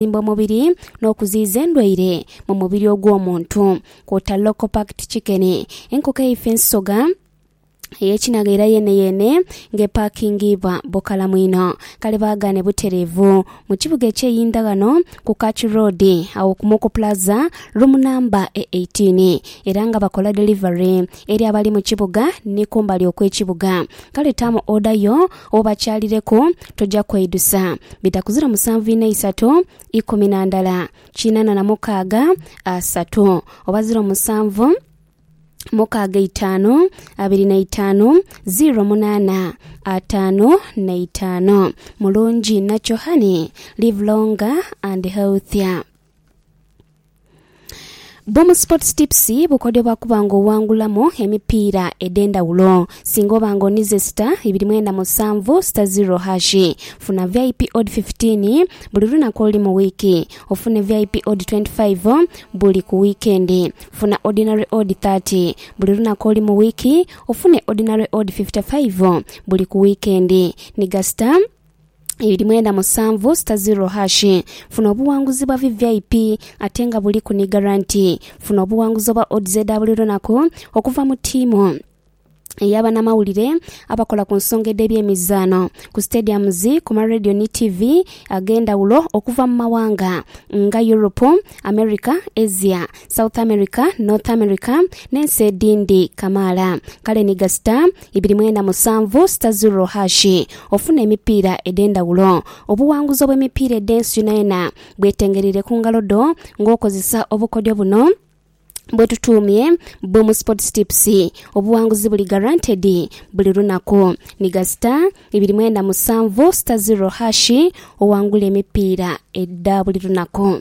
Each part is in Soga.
okuzimba omubiri n'okuziyiza endwaire mu mubiri ogw'omuntu kwota local packed chicken, enkoko eifa ensoga eyekinagha era yeeneyeene nga epakingiibwa bukalamu inho. Kale baagaane butereevu. Mu kibuga eky'e Yindhaghano ku Kachu Road agho ku Muku Plaza room namba e 18 era nga bakola delivery eri abali mu kibuga ni kumbali okw'ekibuga. Kale taamu oda yo Obakyalireku, toja kweidusa. Bitakuzira musanvu ina isatu ikumi na ndala kinana na mukaaga asatu, oba ziro musanvu mukaaga itaanu abiri na itaanu ziro munaana ataanu na itaanu. Mulungi inha kyo honey, live longer and healthier. Bomu Sports Tips bukodyo bwa kuba ng'owangulamu emipiira edh'endhawulo. Singa oba ng'onize sita ibiri mwenda musanvu sita ziro hashi, funa VIP odd 15 buli lunaku oluli mu wiiki. Ofune VIP odd 25 buli ku wiikendi. Funa Ordinary odd 30 buli lunaku oli mu wiiki. Ofune Ordinary odd 55 buli ku wiikendi. Ni gasita ibiri mwenda musanvu sita ziro hashi. Funa obuwanguzi bwa VVIP ate nga buliku ni garanti. Funa obuwanguzi obwa odds edha buli lunaku okuva mu tiimu eyabanamawulire abakola ku nsonga edhebyemizaano ku stadiums ku ma radio ni TV agendawulo okuva mu mawanga nga Europe, America, Asia South America, North America n'ensi edhindi kamaala. Kale ni gasita ibiri mwenda musanvu sita zirro hashi ofune emipiira edh'endhawulo. Obuwanguzi obw'emipiira edh'ensi yonayona bwetengereire ku ngalo dho ng'okozesa obukodyo buno bwetutuumye Boom Sports Tips. Obuwanguzi buli guaranteed buli lunaku. Ni gasita ibiri mwenda musanvu sita zirro hashi owangule emipiira edha buli lunaku.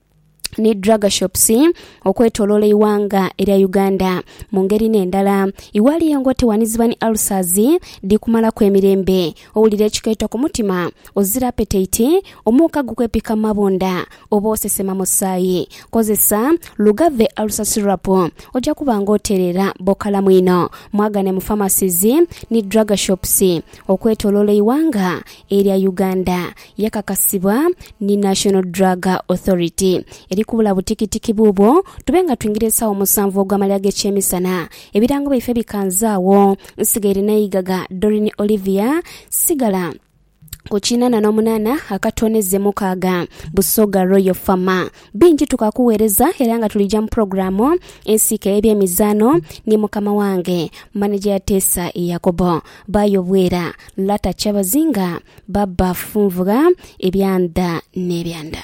ni drug shops okwetoloola eighanga erya Uganda. Mu ngeri n'endala, iwali engo tewaniziba ni ulcers dhi kumalaku emirembe, owulira ekikeeto ku mutima, ozira apetaiti, omuuka gukwepika mu mabunda oba osesema musaayi. Kozesa Lugave Ulcer Syrup oja kuba nga otereera bokalamu inho. Mwagane mu pharmacies ni drug shops okwetoloola eighanga erya Uganda. Yakakasibwa ni National Drug Authority. Eri kubula butikitiki buubwo tube nga twingira esaawa musanvu ogw'amalira g'ekyemisana. Ebirango byaife bikanze agho. Nsigaire n'eigaga Doreen Olivia Sigala ku kinana n'omunana akatooneze mukaaga, Busoga Royal Farmer. Bingi tukakuwereza era nga tulija mu pulogulaamu ensiike ey'ebyemizaano ni mukama wange, maneja ya Teesa Yakobo. Baayo Bwera, Lata Kyabazinga, Babafunvugha ebyanda n'ebyanda.